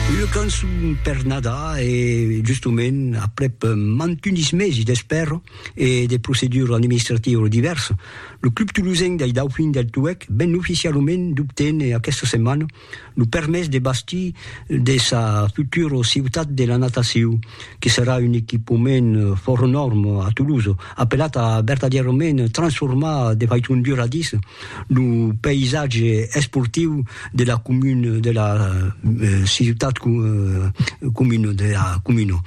Una cançon per Nadar e justement aprèp mantunis mesi d'espèra e de procedura administrativa divèrsa, lo club tolosenc dei Dauphins del Touèc ven oficialament d'obténer aquesta setmana lo permés de bastir de sa futura ciutat de la natacion, que serà un equipament fòra nòrma a Tolosa, apelat a vertadièrament transformar de faiton duradissa Lo païsatge esportiu de la comuna de la ciutat comuna de la comuna.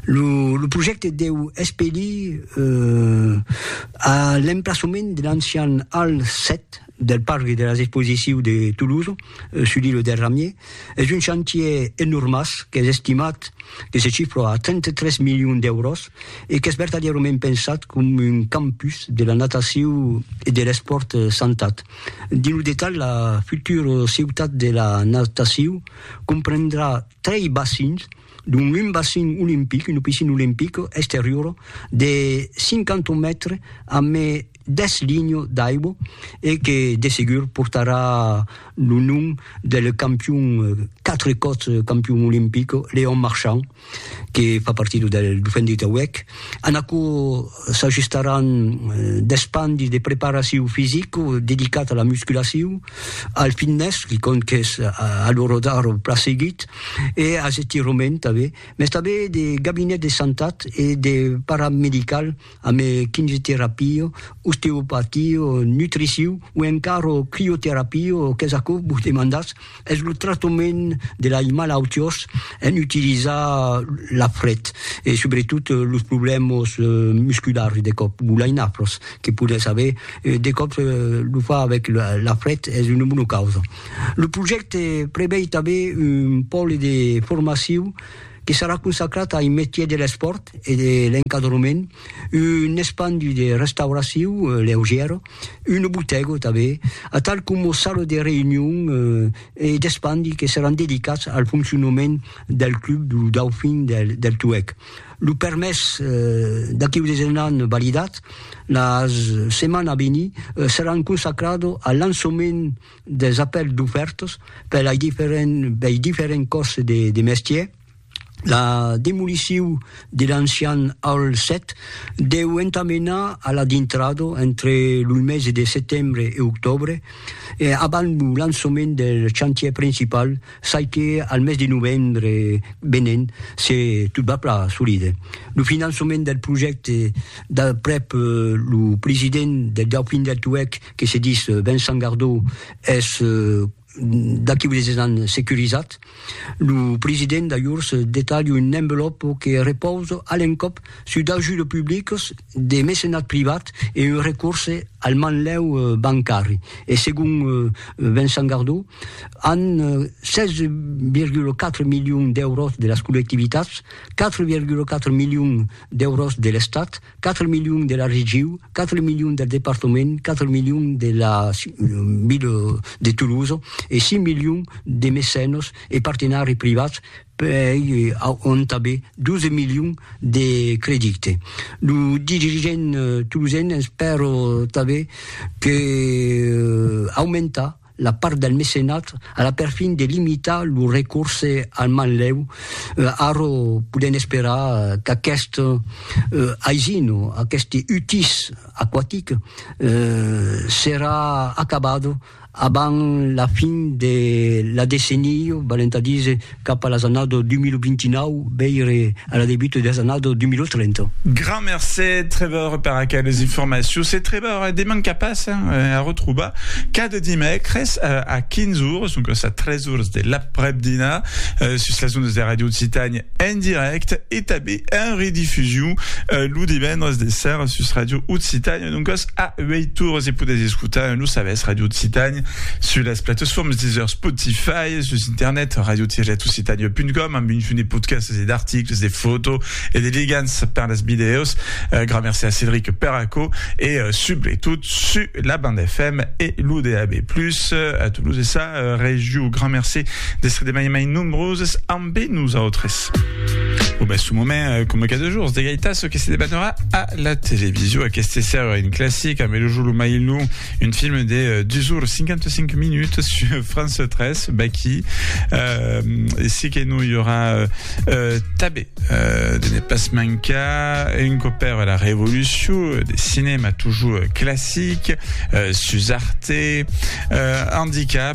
Lo lo projècte deu espelir a l'emplaçament de l'ancian Hall 7 del parc de las exposicius de Toulouse, sul îlot del Ramier, Es un chantier enormàs qu'es estimat que se chifra a 33 milions d'èuros e qu'es vertadièrament pensat com un campus de la natacion e de l'espòrt santat. Dins lo detalh, la futura ciutat de la natacion comprendrà trei bacins, dont un bacin olimpic, una piscina olimpica exteriora de 50 mètres, amé deth linho d'aibo e que de segur portarà lo nom del campion, quatre còps campion olimpic, Léon Marchand, que fa partida del Dauphin de Tauèc. En aquò s'ajustaràn deth pan de preparacion fisica dedicat a la musculacion, al fitness, que compte qu'es a l'ora d'ara eth plan seguit, e as estirament tanben, mès tanben de gabinet de santat e de paramedical, ame quimioterapio, osteopatio, nutriciu o encara crioterapio qu'es aquò que vos demandatz, es lo tractament de lai malautiós en utilizar la fret e subretot los problèmas musculars de còp o lai nafras que podètz aver, de còp lo far avèc la fret es una bona causa. Lo projècte prevei tanben un pòle de formaciu, que serà consacrat ai metier de l'espòrt e de l'encadrement, un espandi de restauraciu leugièra, una botèga tanben, atal coma sala de reünion e d'espandi que seràn dedicats al foncionament del club du Dauphin del Tuèg. Lo permés d'aquiu desenant validat, la setmana a venir seràn consacrada al lançament des apèls dofèrtos per lei diferents bei diferents còrses de de mestier la demoliciu de l'ancian Hall 7 deu entamenar a la dintrado entre lo mese de setembre e octòbre e abans lo lançament del chantièr principal çai que al mes de novembre venent se tot va plan solide lo finançament del projècte d'aprèp lo president del Dauphin del Tuèlh que se dis Vincent Gardau es d'aquí unes des ans securizat, lo president d'ajors detalha un envelòp que repausa a l'encòp sus d'ajudes publicas, de mecenat privat e un recorse al manlèu bancari. E segon Vincent Gardau, an 16,4 milions d'èuros de las collectivitats, 4,4 milions d'èuros de l'Estat, 4 milions de la regiu, 4 milions del departament, 4 milions de la ville de Toulouse e 5 milions de mecènos e partenari privats per ont tanben 12 milions de credite. Lo dirigent toulousain espèro tanben que aumentar la part del mecenat a la perfin de limitar lo recorse al manlèu, ara podèm esperar qu'aquest aisin o aqueste utís aquatic serà acabat abans la fin de la decennia, valent a díser cap a las annadas 2029, veire a la debut de las annadas 2030. Grand mercé Trevor per aqueles informacions. Se Trevor e deman qu'a pas a retrobar cada dimècres a 15 ores, doncas a 3 ores de l'aprèp-dinar, sus las ondas de Radio Occitània en dirècte e tanben en redifusion lo divendres de sèra sus Radio Occitània. E doncas, a uèi torres e podètz escotar en lo sabèth Radio Occitània sus las platesfòrmes Deezer, Spotify, sus internet radio-occitania.com amb un junt de podcasts e d'articles, de fòto e de ligants per las vidèos. Gran merci a Cédric per aquò e subretot sus la banda FM e lo DAB+, a tolos de sa region. Gran merci d'èstre de mai en mai nombroses amb Be nosautres. Bon, ben, su moment, coma cada jours, de gaitar ce que se debanerà a la television. Aqueste ser un classic, amb Lo Jolo Mailou, un film de 2 ores 55 minutes sur France 3, Baki. Euh, si que non, i aurà euh, euh, tabé euh, de ne pas mancar un copère à la révolution, des cinémas toujours classiques, euh, Suzarte, euh, Handicap,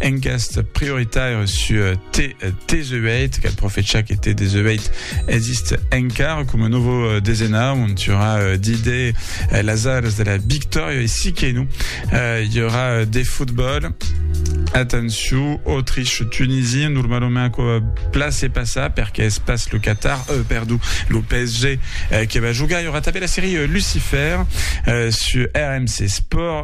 Engast prioritaire su T18, quel profecha que T18 exist encara com un novo desena, on tura d'ide las aras de la victòria e si que no, i aurà de fotbòl. Atenció, Autriche, Tunisie, normalement aquò place passa perque es pas lo Qatar, euh, perdó, lo PSG eh, que va jogar. I aurà tanben la serie Lucifer eh, su RMC Sport.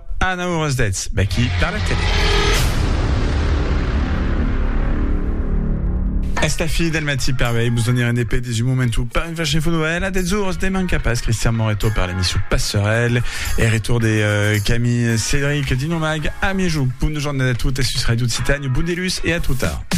Anna Houras d'Etz, vèqui per la tele. Es la fin del matí per avei, mos donirem de pè dins un moment o per un flash info novèl a 10 oras, ne manca pas Christian Moreto per l'emission Passerèl e retour de euh, Camille Cédric Dinomag a mièjorn. Bona jornada a totes sus Radio Occitània, bon dilús e a tot tard.